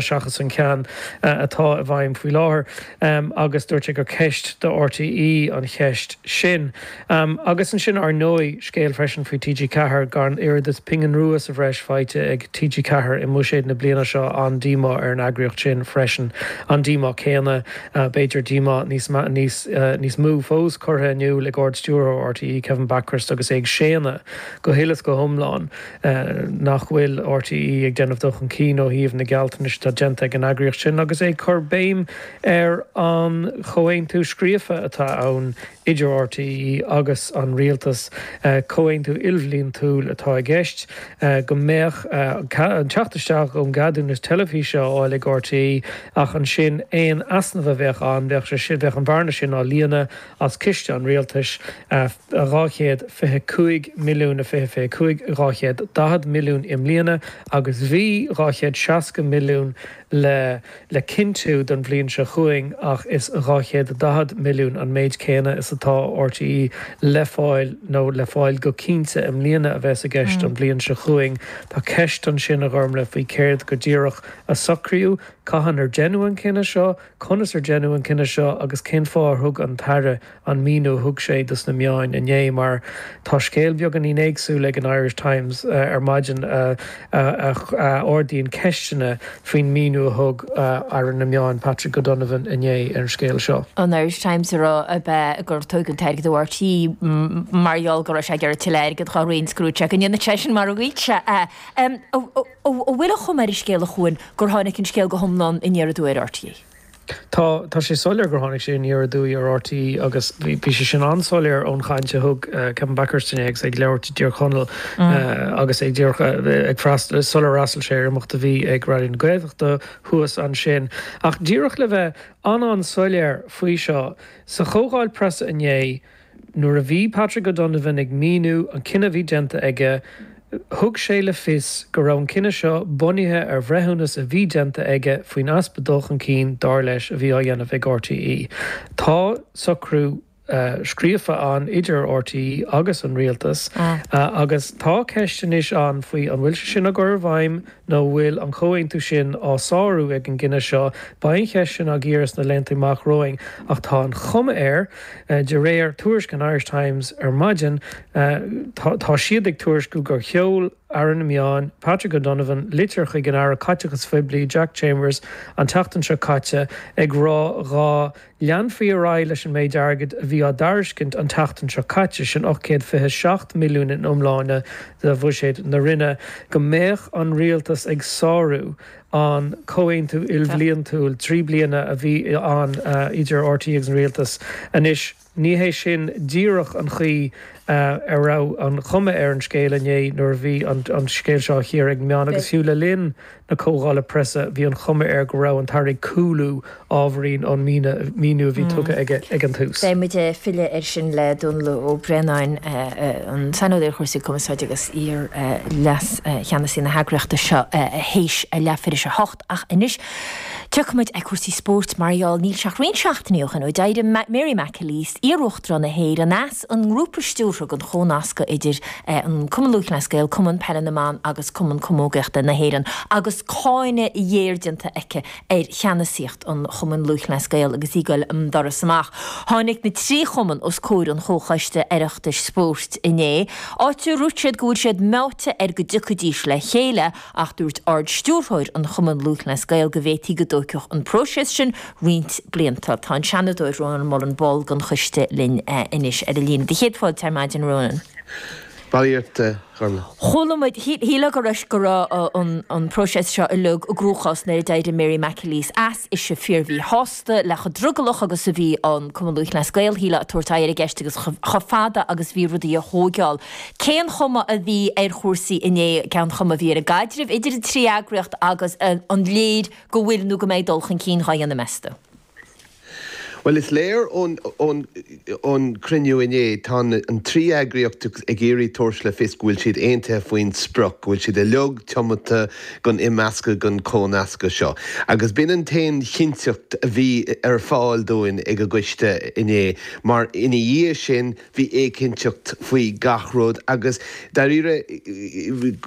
seachas an ceann atá i bhfeidhm faoi láthair agus dúirt sé gur ceist do RTÉ an cheist sin. Agus ansin ár ndóigh, scéal freisin faoi TG Ceathair, gan oiread is pingin rua sa bhreis faighte ag TG Ceathair i mbuiséad na bliana seo, an-díomá ar an eagraíocht sin freisin. An díomá céanna, b'fhéidir díomá níos mó fós, curtha in iúl ag Ard Stiúrthóir RTÉ, Kevin Bakhurst agus é ag séanadh go huile is go hiomlán, nach bhfuil RTÉ ag déanamh dul chun cinn ó thaobh na gealltanais atá déanta ag an eagraíocht sin agus é ag cur béim ar an chomhaontú scríofa atá ann idir RTÉ agus an Rialtas, comhaontú ilbhliantúil atá i gceist, go mbeadh an teacht isteach ón gceadúnas teilifíse á fháil ag RTÉ ach ansin aon easnamh a bheadh ann, bheadh an bhearna sin á líonadh as ciste an Rialtais. 225 milliún i fiche fiche 5 240 milliún i mbliana agus bhí 260 milliún le le cinntiú don bhliain seo chugainn ach is 240 milliún an méid céanna is atá RTÉ le fáil nó le fáil go cinnte i mbliana a bheas i gceist don bhliain seo chugainn. Tá ceist ansin, a Ghormlaith, faoi céard go díreach a socraíodh, cathain ar deineadh an cinneadh seo, conas ar deineadh an cinneadh seo agus cén fáth ar thug an tAire an míniú a thug sé dos na meáin inné mar tá scéal beagáinín éagsúil ag an Irish Times ar maidin a ardaíonn ceisteanna faoin míniú a thug Aire na Meán Patrick O'Donovan inné ar an scéal seo. an Irish Times a rá ab ea gur tógadh an t-airgead ó RTÉ mar gheall go raibh sé ag iarraidh tuilleadh airgid dá roinn scrúdú ach go ndéanann sé sin mar a mhaígh sé é. An bhfuil an chuma ar an scéal, a Chuain, gur tháinig an scéal go hiomlán aniar aduaidh ar RTÉ? Tá, tá sé soiléir gur tháinig sé aniar aduaidh ar RTÉ agus bhí, bhí sé sin an-soiléir ón chaint a thug Kevin Bakhurst inné agus é ag labhairt i dTír Chonaill agus é ag díreach, ag freastal, sular fhreastail sé ar imeacht a bhí ag Raidió na Gaeltachta thuas ansin. Ach díreach le bheith an-an-soiléir faoi seo, sa chomhdháil preasa inné, Nuair a bhí Patrick O'Donovan ag míniú an cinneadh a bhí déanta aige, thug sé le fios go raibh an cinneadh seo bunaithe ar bhreithiúnas a bhí déanta aige faoin easpa dul chun cinn, dar leis, a bhí á dhéanamh ag RTÉ. Tá socrú scríofa ann idir RTÉ agus an Rialtas agus tá ceist anois ann faoi an bhfuil sé sin á chur i bhfeidhm nó bhfuil an comhaontú sin á shárú ag an gcinneadh seo, beidh an cheist sin á cíoradh sna laethanta amach romhainn ach tá an chuma air, de réir tuairisc an Irish Times ar maidin, tá siad ag tuairisciú gur sheol Aire na Meán, Patrick O'Donovan, litir chuig an Aire Caiteachais Phoiblí, Jack Chambers, an tseachtain seo caite ag rá dá Leanfaí ar aghaidh leis an méid airgid a bhí á dtairiscint an tseachtain seo caite, sin €827 milliún in iomláine de bhuiséad na Roinne, go mbeadh an Rialtas ag sárú an comhaontú ilbhliantúil trí bliana a bhí ann idir RTÉ agus an Rialtas. Anois, ní hé sin díreach an chaoi a raibh an chuma ar an scéal inné nuair a bhí an scéal seo á chíoradh ag meáin agus fiú le linn na Comhdhála Preasa, bhí an chuma air go raibh an tAire ag cúlú ábhairín ón míniú a bhí tugtha aige ag an tús. Beidh muid ag filleadh air sin le Dónall Ó Braonáin, an Saineolaí ar Chúrsaí Cumarsáide agus iar-Leas-Cheannasaí na heagraíochta seo, théis a leathuair théis a hocht. Ach anois, tiocfaidh muid ar chúrsaí spóirt mar gheall, níl sé ach roinnt seachtainí ó shin ó d'éirigh Mary McAleese, iar-Uachtarán na hÉireann, as. an nGrúpa Stiúrtha don chomhnascadh idir an Cumann Lúthchleas Gael, Cumann Peile na mBan agus Cumann Camógaíochta na hÉireann, agus cáineadh ghéar déanta aici ar cheannasaíocht an Chumainn Lúthchleas Gael agus í ag goil an doras amach, tháinig na trí chumann os comhair an Chomhchoiste Oireachtais Spóirt inné, áit ar dúirt siad go bhfuil siad meáite ar go dtiocfaidís le chéile ach dúirt Ard-Stiúrthóir an Chumainn Lúthchleas Gael go bhféadfaí go dtóigfeadh an próiseas sin roinnt blianta. Tá an Seanadóir Rónán Mullen, ball den choiste, linn anois ar an líne. Do chéad fáilte ar maidin, Rónán. Barraíocht de dhornán. Chuala muid, shílfeá go raibh go raibh an próiseas seo uilig i gcruachás nuair a d'éirigh Mary McAleese as. Ise fíormhíshásta le chomh drogallach agus a bhí an Cumann Lúthchleas Gael, shílfeá, ag tabhairt aghaidh ar an gceist agus chomh fada agus bhí rudaí a thóigeáil. Cén chuma a bhí ar chúrsaí inné? Cén chuma a bhí ar an gcaidreamh idir an trí eagraíocht agus an léir go bhfuil nó go mbeidh dul chun cinn dhá dhéanamh meas tú? Bhuel, is léir ón gcruinniú inné, tá an trí eagraíocht ag iarraidh tabhairt le fios go bhfuil siad aontaithe faoin sprioc, go bhfuil siad uilig tiomanta don imeascadh, don chomhnascadh seo. Agus b'in an t-aon chinnteacht a bhí ar fáil dúinn ag an gcoiste inné, mar ina dhiaidh sin, Bhí éiginnteacht faoi gach rud agus, dáiríre,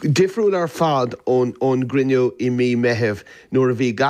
difriúil ar fad ón gcruinniú i mí Meithimh nuair a bhí